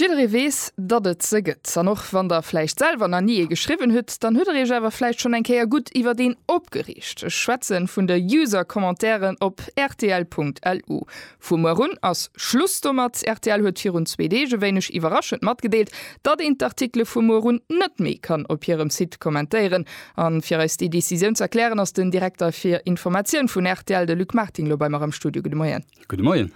Jidderee weess, datt et se gëtt. An och wann der vläicht selwer nach ni ee geschriwwen hutt, dann hutt der iech awer vläicht schonn eng Kéier gutt iwwert een opgereegt. Ech schwätze vun de User-Commentairen op rtl.lu. Vu muer un ass Schluss domat. Rtl huet virun zwee Deeg e wéineg iwwerraschend matgedeelt, datt een d'Artikele vu muer un net méi kann op hirem Site kommentéieren. A fir eis déi Decisioun z'erklären, ass den Direkter fir Informatioun vun rtl, de Luc Martin, elo bei mer am Studio. Gudde Moien. Gudde Moien.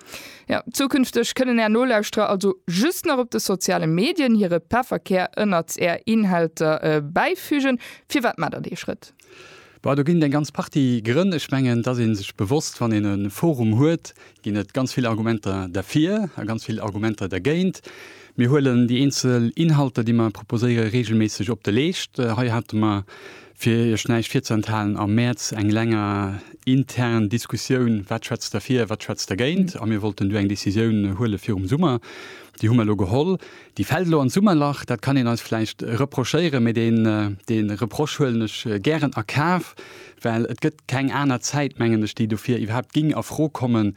Jo, zukünfteg kënnen Är Nolauschterer also just nach op de soziale Medien hire Pefferkär ënnert Är Inhalter bäifügen. Firwat maacht Der dee Schrëtt? Boah, do ginn et eng ganz Partie Grënn. Ech mengen, et ass ee sech bewosst, wann een e Forum huet, ginn et ganz vill Argumenter derfir a ganz vill Argumenter dergéint. Mir huelen déi eenzel Inhalter, déi mer proposéiere reegelméisseg op de Leescht. Hei hate mer Fir Iech näischt virzuenthalen, am Mäerz eng länger intern Diskussioun, wat schwätzt derfir, wat schwätzt dergéint, a mir wollten du eng Decisioun huele virum Summer. Déi hu mer elo geholl. Déi fält elo an d'Summerlach, dat kann een eis vläicht reprochéieren, mee dee Reproche huelen ech gären a Kaf, well et gëtt keng aner Zäit, mengen ech, déi dofir iwwerhaapt géing a Fro kommen,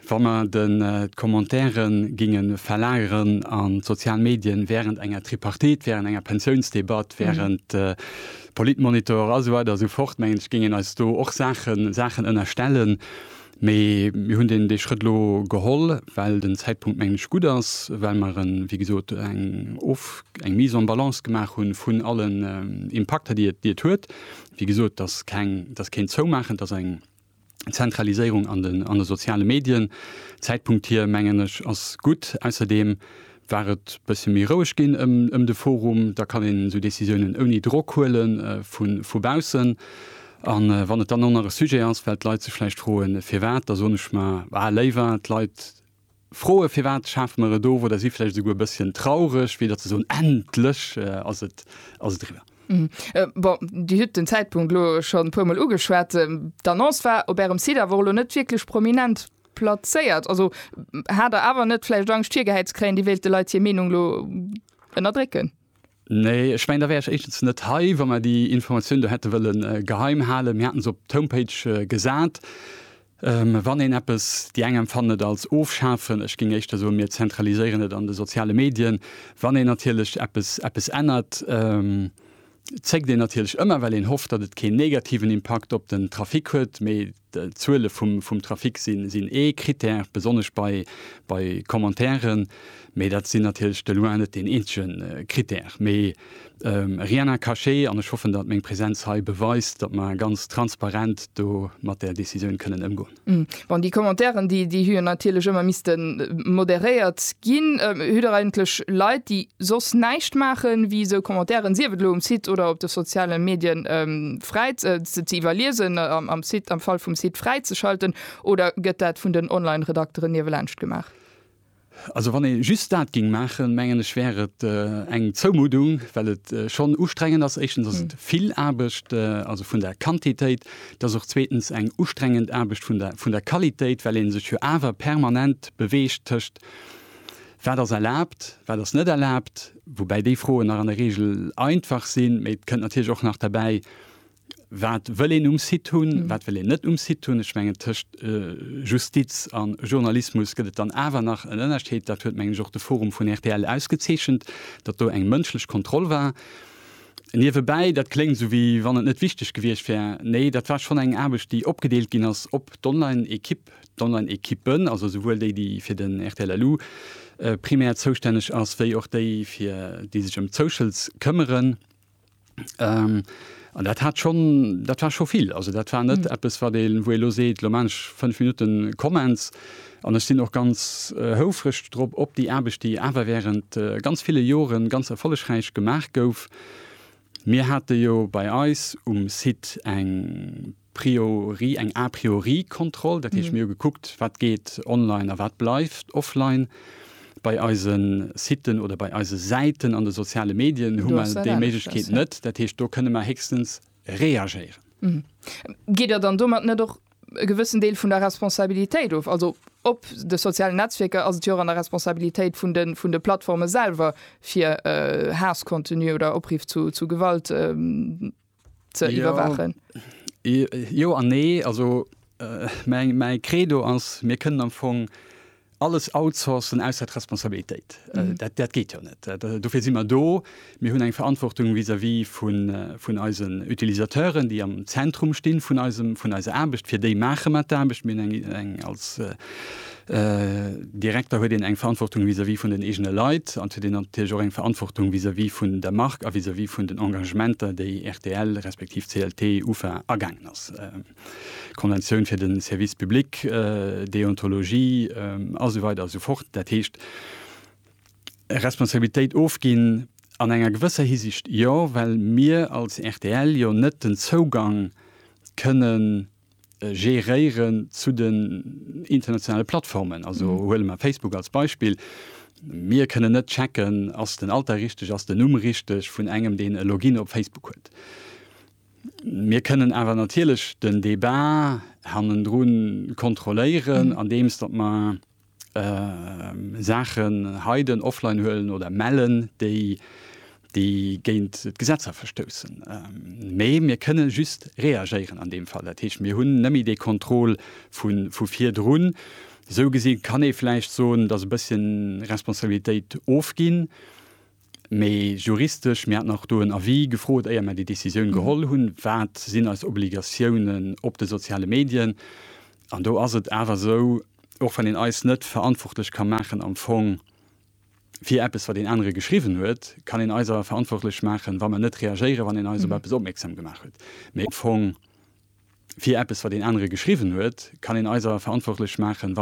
Wa mer den d'Commentaiere ginge verlageren an d'sozial Medien während enger Tripartite, während enger Pensiounsdebatt, während Politmonitor a sou weider a sou fort, mengen ech, géing een eis do och Saachen, Saachen ënnerstellen. Mee mir hunn deen, dee Schrëtt elo geholl, well den Zäitpunkt, mengen ech, gutt ass, well mer en, wéi gesot, eng Of, eng Mise en balance gemaach hunn vun allen Impakter, déi et, déi et huet. Wéi gesot, et ass keng, et ass keen Zoumaachen, et ass eng, Zentraliséierung an den, an de soziale Medien. Zäitpunkt hier, mengen ech, ass gutt. Ausserdeem war et bësse méi roueg ginn ëm, ëm de Forum. Da kann een esou Decisiounen ouni Drock huele vu, vu baussen. A wann et dann och nach e Sujet ass, well d'Leit sech vläicht froen, firwat, da soen ech mar, ah, léiwer d'Leit, Froe firwat schafe mer et of, oder si vläicht esouguer e bësschen traureg, wéi datt se soen, endlech ass et eriwwer. Bon, Dir hutt den Zäitpunkt elo schonn e puermol ugeschwat. D'Annonce war op Ärem Site awer och elo net wierklech prominent plazéiert. Also hat Der awer net vläicht Angscht virgehäit ze kréien, Dir wéilt de Leit hir Meenung elo ënnerdrécken? Nee, ech mengen, da wär ech éischtens net hei, wa mer déi Informatioun do hätte wëlle geheim halen. Mir haten se op d'Homepage gesat. Wann een eppes, déi eng empfannen et als ofschafen, ech géing éischter soen, mir zentraliséieren et an de soziale Medien. Wann een natierlech eppes, eppes ännert, zéckt een natierlech ëmmer, well een hofft, datt et keen negativen Impakt op den Trafic huet. Mee D'Zuele vum Trafic sinn ee Critère, besonnesch bei Commentairen, mee dat sinn natierlech de loin net deen eenzege Critère. Mee rien n'a caché an ech hoffen, datt meng Presenz hei beweist, datt mer ganz transparent do mat där Decisioun kënnen ëmgoen. Bon, déi Commentairen, déi hu jo natierlech ëmmer misste moderéiert ginn. Hutt Der eigentlech Leit, déi soss näischt maachen, wéi esou Commentairen, sief et elo um Site oder op de soziale Medien, fräi ze ze iwwerliesen, am Site, am Fall vum Site fräi ze schalten, oder gëtt dat vun den Online-Redakteren niewelaanscht gemaach? Also wann ee just dat géing maachen, mengen ech, wär et eng Zoumuddung, well et schonn ustrengend ass. Éischtens ass et vill Aarbecht, also vun der Quantitéit. Et ass och zweetens eng ustrengend Aarbecht vun der vun der Qualitéit, well ee sech jo awer permanent beweegt tëscht Wat ass erlaabt, wat ass net erlaabt? Woubäi déi Froen nach an der Reegel einfach sinn. Mee et kënnt natierlech och nach derbäi, Wat wëll een um Site hunn, wat wëll een net um Site hunn? Ech mengen, tëscht Justiz a Journalismus gëtt et dann awer nach en Ënnerscheed. Dat huet, mengen ech, och de Forum vun rtl ausgezeechent, datt do eng mënschlech Kontroll war. Niewebäi, dat kléngt esou, wéi wann et net wichteg gewiescht wär. Nee, dat war schonn eng Aarbecht, déi opgedeelt ginn ass op d'Online-Ekipp, D'Online-Equippen, also souwuel déi, déi fir den rtl LU primär zoustänneg ass, wéi och déi, fir déi sech ëm d'Socials këmmeren, an dat hat schonn, dat war scho vill. Also dat war net eppes, wat ee, wou ee elo seet, elo maan ech fënnf Minutte Comments an ech sinn och ganz houfreg drop, op déi Aarbecht, déi awer während ganz ville Joren ganz erfollegräich gemaach gouf. Mir hate jo bei eis um Site eng Priorie, eng A priori-Kontroll, dat heescht mir hu gekuckt, wat geet online a wat bleift offline. Bei eise Siten oder bei eise Säiten an de soziale Medien hu mer déi Méiglechkeet net. Dat heescht, do kënne mer héchstens reagéieren. Gitt Der dann domat net och e gewëssen Deel vun der Responsabilitéit of. Also op de sozialen Netzwierker ass et jo och an der Responsabilitéit vun de, vun de Plattforme selwer, fir äh, Haasscontenu oder Opriff zu, zu Gewalt äh, ze ja. iwwerwaachen. Jo an nee, also äh, mäi Credo ass, mir kënnen am Fong Alles outsourcen ausser d'Responsabilitéit, dat geet jo net. Dofir si mer do. Mir hunn eng Verantwortung vis-à-vis vun eisen Utilisateuren, déi am Zentrum stinn vun eiser Aarbecht. Fir déi maache mer d'Aarbecht. Mir hunn eng, als Direkter huet een eng Verantwortung vis-à-vis vun den eegene Leit an et huet een natierlech och eng Verantwortung vis-à-vis vun der Mark a vis-à-vis vun den Engagementer, déi rtl respektiv CLT, ufa agaangen ass. Konventioun fir de Service public, Deontologie a sou weider a sou fort. Dat heescht, Responsabilitéit ofginn, an enger gewësser Hisiicht jo, well mir als rtl jo net den Zougang kënne geréieren zu den internationale Plattformen. Also huele mer Facebook als Beispill, Mir kënnen net checken, ass den Alter richteg, ass den Numm richteg vun engem, deen e Login op Facebook huet. Mir kënnen awer natierlech den Débat hannendru kontrolléieren, andeems datt mer Saachen hiden, offline huelen oder mellen, déi géint d'Gesetzer verstoussen. Mee mir kënne just reagéieren an deem Fall. Dat heescht, mir hunn nëmme dee Contrôle vu virdrun. Esou gesi kann ee vläicht soen, datt e bësschen Responsabilitéit ofginn Mee juristesch, mir haten och do en Avis gefrot, éier mir déi Décisioun geholl hunn, wat sinn eis Obligatiounen op de soziale Medien? An do ass et awer esou, och wann een eis net verantwortlech ka maachen am Fong fir eppes, wat een anere geschriwwen huet, kann een eis awer verantwortlech maachen, wa mer net reagéieren, wann een eis op eppes opmierksam gemaach huet. Mee am Fong fir eppes, wat een anere geschriwwen huet, kann een eis awer verantwortlech maachen, wa.